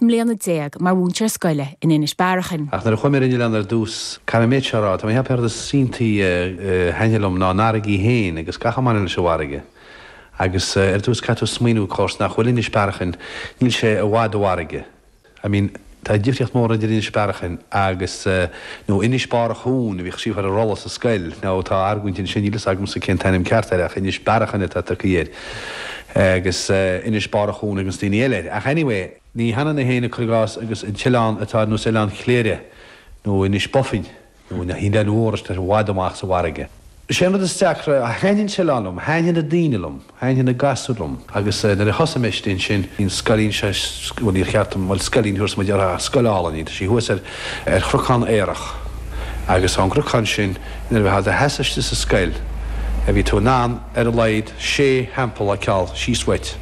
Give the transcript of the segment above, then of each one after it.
mbliana déag mar mhúinteoir scoile in Inis Bearachain. Ach nuair a chuaigh mé ar an oileán ar dtús, caithfidh mé an méid seo a rá, tá mé ag ceapadh ar na saontaí a thaitnigh liom ná an fharraige féin agus gach a mbaineann leis an bhfarraige. Agus ar dtús caithfidh tú smaoiniú of course nach bhfuil Inis Bearachain, níl sé i bhfad i bhfarraige. I mean tá difríocht mór idir Inis Bearachain agus nó Inis Bárachúin a bhíodh scríofa ar an rolla sa scoil, now tá argóint ansin, níl a fhios agamsa cén t-ainm ceart air ach Inis Bearachain atá tugtha air. Agus Inis Bárachúin ag daoine eile air. Ach anyway. Ní hionann é féin cuir i gcás agus an t-oileán atá ar nós Oileán Chléire, nó Inis Bó Finne, nó na hoileáin úd atá i bhfad amach sa bhfarraige. Is é an rud is deacra, thaitnigh an t-oileán liom, thaitnigh na daoine liom, thaitnigh na gasúir liom. Agus nuair a thosaigh mé istigh ansin, bhí an scoilín seo, bhuel níor cheart dom, bhuel scoilín, a thabharfas muid uirthi ach scoil álainn í, tá sí thuas ar chnocán aerach. Agus ón gcnocán sin, nuair a bhí tú i do sheasamh istigh sa scoil, bhí tú in ann, ar a laghad sé theampall a fheiceáil síos uait.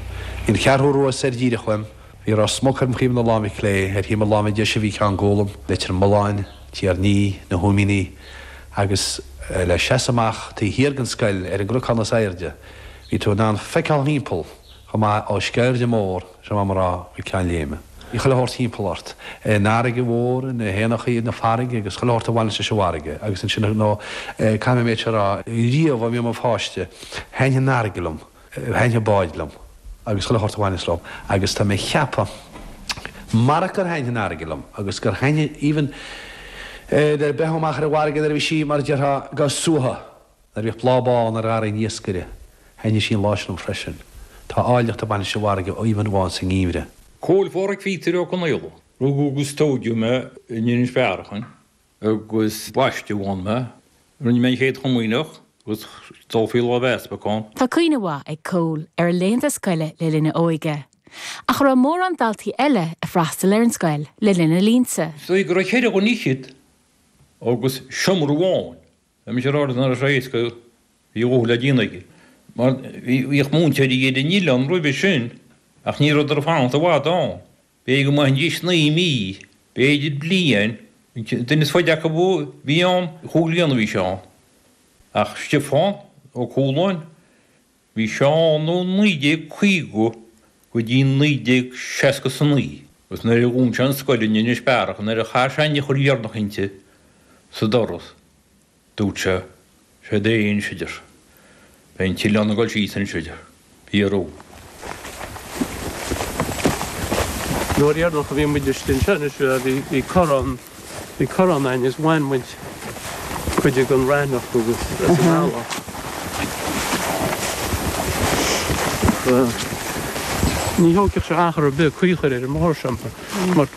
Bhí an Cheathrú Rua soir díreach uaim. Bhí Ros Muc ar thaobh na láimhe clé, ar thaobh mo láimhe deise bhí Ceann Gólaim, Leitir Mealláin, Tír an Fhia, Na Húimíní, agus le seasamh amach taobh thiar den scoil ar an gcnocán is airde bhí tú in ann feiceáil thimpeall Chomh maith, ó Sceirde Mór, siar Conamara, go Ceann Léime. Bhí chuile shórt thimpeall ort. An fharraige mhór, na héanachaí na farraige agus chuile shórt a bhaineas leis an bhfarraige. Agus ansin, ar ndóigh, caithfidh mé an méid seo a rá, riamh ó bhí mé i mo pháiste, thaitnigh an fharraige liom, thaitnigh na báid liom agus chuile shórt a bhaineas leo. Agus tá mé ag ceapadh, marach gur thaitnigh an fharraige liom agus gur thaitnigh even, eh, bheith amuigh ar an bhfarraige nuair a bhí sí, mar a déarfá, go suaite. Nuair a bhíodh bláth bán ar gharraí an iascaire, thaitníodh sí an lá sin liom freisin. Tá áilleacht ag baint leis an bhfarraige even amháin sa ngeimhreadh. Cóil Phádraig Phíotair Ó Conaola. Rugadh agus tóigeadh mé in Inis Bearachain agus baisteadh ann mé. Rinne mé an Chéad Chomaoineach agus dul faoi láimh easpaig ann. Tá cuimhne mhaith ag Cóil ar a laethanta scoile le linn a óige. Ach an raibh mórán daltaí eile ag freastal ar an scoil le linn a línte. Is dóigh go raibh ceithre dhuine fhichead agus seomra amháin Bhí mise ar ard an iris Aodh go raibh a dhóthain le déanamh aige mar bhíodh múinteoirí eile ann roimhe sin ach ní raibheadar ag fanacht i bhfad ann. B'fhéidir go mbeidís naoi mí, b'fhéidir bliain, an duine is faide acu a bhí ann, chúig bliana a bhí sé ann. Ach Stiofán Ó Cualáin. Bhí sé ann ó 1950 go dtí 1969 agus nuair a dhún sé an scoil in Inis Bearachain, nuair a chas sé an eochair dheireanach inti, sa doras, dúirt sé, Sé deireadh anois, a deir sé. Beidh an t-oileán ag dul síos anois, a deir. B'fhíor dó. An uair dheireanach a bhí muid istigh anseo anois, bhí corrán. Bhí corrán ann is bhain muid cuid den raithneach agus as an eallach. Ní thógfadh sé achar ar bith caoi a chur ar an mbóthar seo mar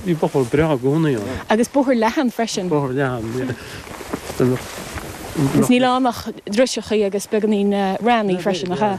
bhí bóthar breá i gcónaí ann. Agus bóthar leathan freisin. Bóthar leathan, yeah. Is níl ann ach driseachaí agus beagáinín raithní freisin, nach ea?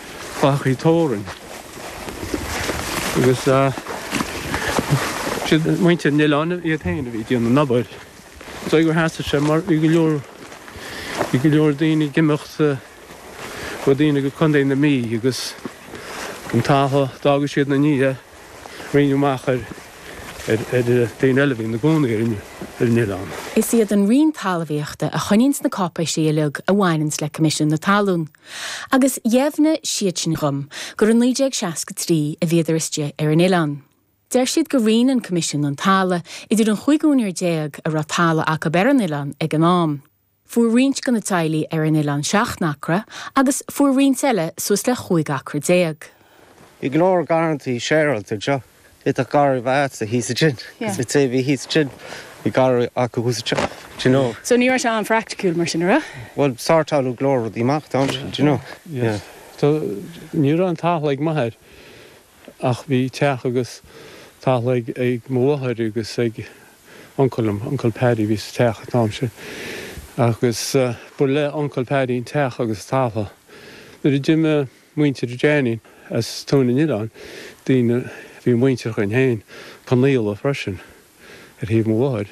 fathachai tórainn agus is iad muintir an oileáin iad féin a bhí ag déanamh an obair. So gur sheasaigh sé mar bhí go leor bhí go leor daoine ag imeacht go daoine go Contae na Mí agus an talamh, d'fhágadh siad ina ndiaidh, roinneadh amach ar ar daoine eile a bhí ina gcónaí ar an oileán. Is iad an Roinn Talmhaíochta a choinníonns na cáipéisí uilig a bhaineanns le Coimisiún na Talún. Agus dheimhnigh siad sin dhom gur i 1963 a bhíodar istigh ar an Oileán. Deir siad gur roinn an Coimisiún an tala' idir an chúig úinéir déag a raibh tala' acu ar an Oileán ag an am. Fuair roinnt de na teaghlaigh ar an Oileán seacht n-acra agus fuair roinnt eile suas le chúig acra déag. I gClár Garrantaí Séaraltaigh. Bhí tá garraí bheith a'dsa thíos ansin agus bhí taobh bhí thíos ansin, bhí garraí acu thuas anseo, do you know. So ní raibh sé an-phracticiúil mar sin, a' raibh? Bhuel sortáileadh go leor rudaí amach do ansin, do you know, yeah. So ní raibh aon talamh ag m'athair ach bhí teach agus talamh ag ag mo mháthair agus ag uncail liom, Uncle Paddy a bhí sa teach a' t-am sin agus ba le Uncle Paddy an teach agus talamh. Nuair a d'imigh. muintir Jeainín as Tóin an Oileáin, daoine a bhí muintearach linn féin, Conghaola freisin, ar thaobh mo mháthair.